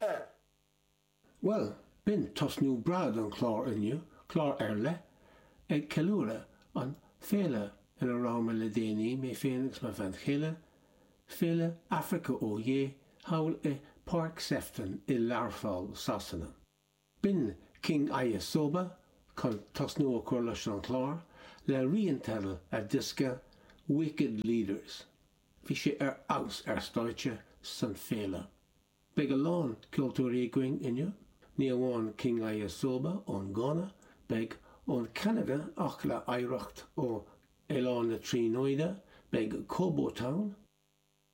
ar. Bhuel, b'in tosnú breá don chlár inniu, clár ar leith, ag ceiliúradh an féile ina raibh mé le déanaí, mé féin agus mo bhean chéile, Féile Africa Oyé, thall i bPáirc Sefton i Learpholl, Sasana. B'in King Ayisoba chun tosnú a chur leis an chlár le rian teidil a dhiosca Wicked Leaders. Bhí sé ar fheabhas ar stáitse san Féile. Beidh a lán ceoltóirí againn inniu, ní amháin King Ayisoba ón Gána, beidh ón Ceanada ach le hoidhreacht ó Oileán na Tríonóide, beidh Kobo Town,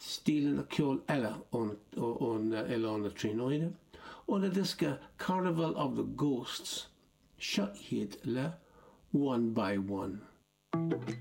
stíleanna ceoil eile ó Oileán na Tríonóide, óna diosca Carnival of the Ghosts, seo iad le One by One.